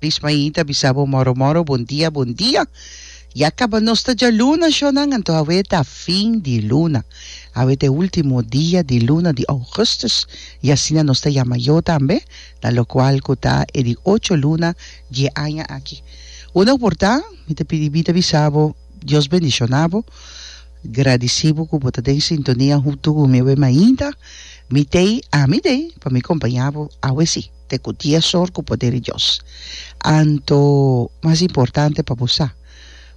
Lismaí ta bisa bo moro moro bon dia bon dia ya kaba nos ta djaluna shonan anto awe ta fin di luna awe ta e ultimo dia di luna di augustus y asina nos ta yama yo tambe na lokual ku ta e di ocho luna dje aña aki uno por ta mi ta pidi mi ta bisa bo Dios bendiciona bo. Gradeci bo cu bo ta den sintonia hunto cu mi awe mainta mi tey ami dey pa mi compaña bo awe si te cu dies or cu poder di Dios. Anto mas importante pa bo sa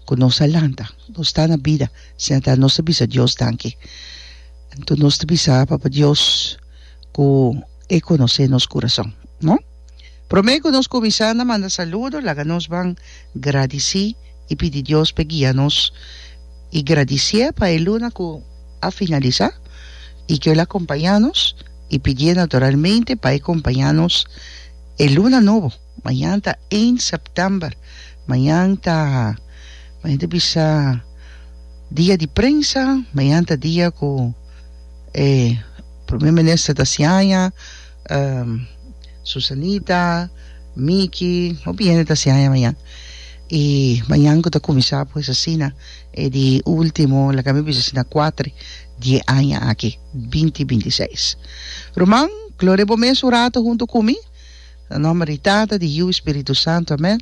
cu nos a lanta nos ta na bida sinata nos ta bisa Dios danki. Anto nos ta bisa Papa Dios cu e conoce nos curason no. Promé ku nos kuminsá na manda saludo, laga nos ban gradisí i pidi Dios p'e guia nos i gradisié pa e luna ku a finalisá i ku el a kompañá nos i pidié naturalmente pa e kompañá nos e luna nobo. Mañan ta één sèptèmber. Mañan ta, mañan ta bisa dia di prensa, mañan ta dia ku e promé minister ta siaña. Um, Susanita, Miki, hopi hende ta siaña mañan. Y mañan cu ta cuminsa pues asina, e di ultimo, laga mi bisa asina cuatri die aña aki, binti binti seis. Ruman, gloria bo mes un rato hunto cu mi, na nomber di Tata, di Yiu, Spiritu Santo, amen.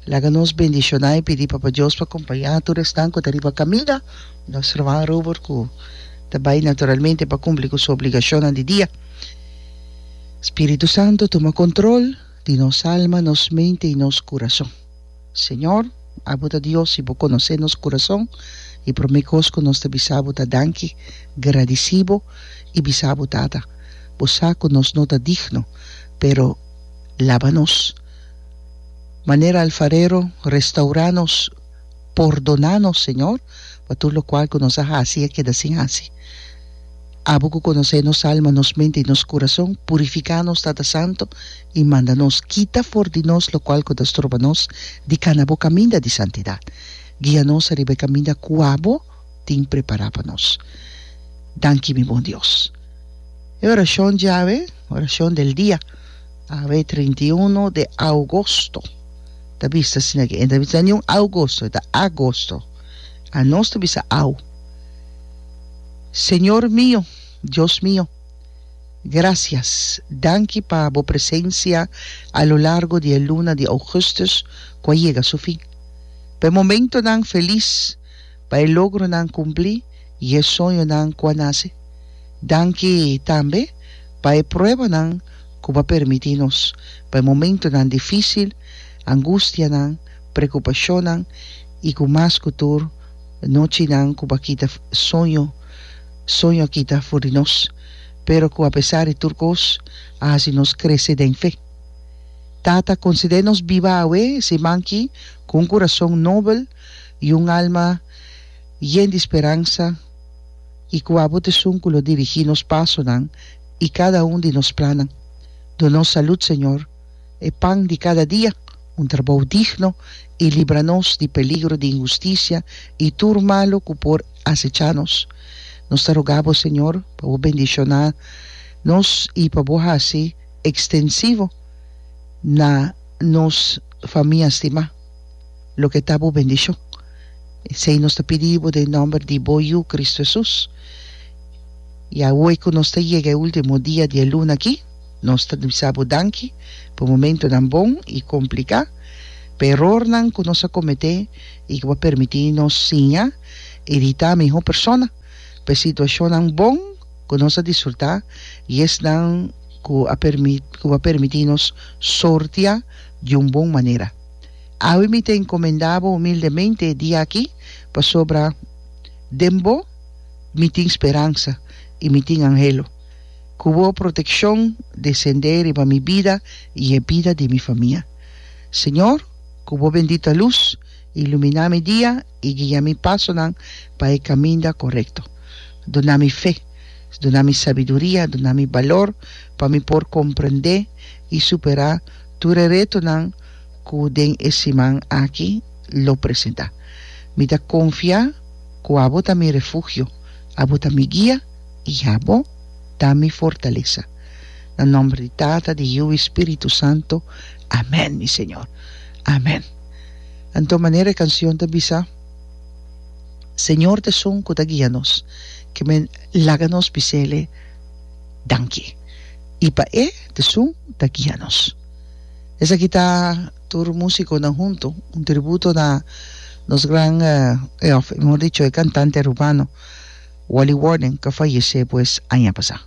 Laga nos bendiciona y pidi Papa Dios pa compaña tur esnan cu ta riba caminda, nos Ruman Robert cu ta bay naturalmente pa cumpli cu su obligacionnan di dia. Spiritu Santo tuma control di nos alma, nos mente y nos curason. Señor, abo ta Dios y bo conoce nos curason y prome cos cu nos ta bisa bo ta danki, gradici bo y bisa bo Tata, bo sa cu nos no ta digno, pero laba nos manera alfarero, restaura nos, pordona nos Señor pa tur locual cu nos a haci y a keda sin haci. Abo cu conoce nos alma, nos mente y nos curason, purifica nos Tata Santo y manda nos kita for di nos locual cu ta stroba nos di cana bo caminda di santidad. Guia nos ariba e caminda cu abo tin prepara pa nos. Danki mi bon Dios. E oracion djawe, oracion del dia, awe trinta i uno de augosto ta bista asina aki. E no ta bisa niun augosto, e ta agosto. Anos ta bisa au. Señor mio, Dios mio, gracias, danki pa bo presencia a lo largo di e luna di augustus cu a yega su fin, pa e momentonan feliz, pa e logronan cumpli y e soñonan cu a nace. Danki tambe pa e pruebanan cu bo a permiti nos, pa e momentonan dificil, angustianan, preocupacionnan y cu mas cu tur, Nochinan ku pa kita soño, soño a kita for di nos, pero ku apesar di tur kos a hasi nos krese den fe. Tata, konsede nos biba awe si manki ku un kurason nobel i un alma yen di speransa i ku abo t'esun ku lo dirigí nos pasonan i kada un di nos plannan. Duna nos salud, Señor. e pan di kada dia, un trabou digno i libra nos di peligro di inhustisia i tur malu ku por asecha nos. Nos ta rogá bo, Señor, pa bo bendishoná nos i pa bo hasi ekstensivo na nos famia stimá loke ta bo bendishon. Esei nos ta pidi bo den nòmber di bo Yu, Kristu Hesus. Ya ue ku nos ta yega e último dia di e luna akí. Nos ta bisa bo danki pa momentunan bon i kompliká, pa erornan ku nos a kometé i ku bo a permití nos siña i di ta mihó persona, pa e situashonnan bon ku nos a disfrutá i esnan ku a permit ku bo a permití nos sortiá di un bon manera. Awe mi ta enkomendá bo humildemente e dia aki, pasobra den bo mi tin speransa i mi tin anhelo. Ku bo protekshon desendé riba mi bida i e bida di mi famia. Señor, ku bo bendita lus iluminá mi dia i guia mi pasonan pa e kaminda korekto. Duna mi fe, duna mi sabiduria, duna mi balor pa mi por komprendé i superá tur e retonan ku den e siman aki lo presentá. Mi ta konfia ku abo ta mi refugio, abo ta mi guia. Ya bo ta mi fortalesa. Na nomber di Tata, di Yiu i Spiritu Santo, amen, mi Señor. Amen. Anto manera e cancion ta bisa, Señor t'esun cu ta guia nos, cu mi laga nos bis'Ele danki, i pa E t'esun ta guia nos. Esaki ta tur musiconan hunto, un tributo na nos gran, of mehor dicho, e cantante Rubano. Wally Warden ka fayesé pues aña pasá.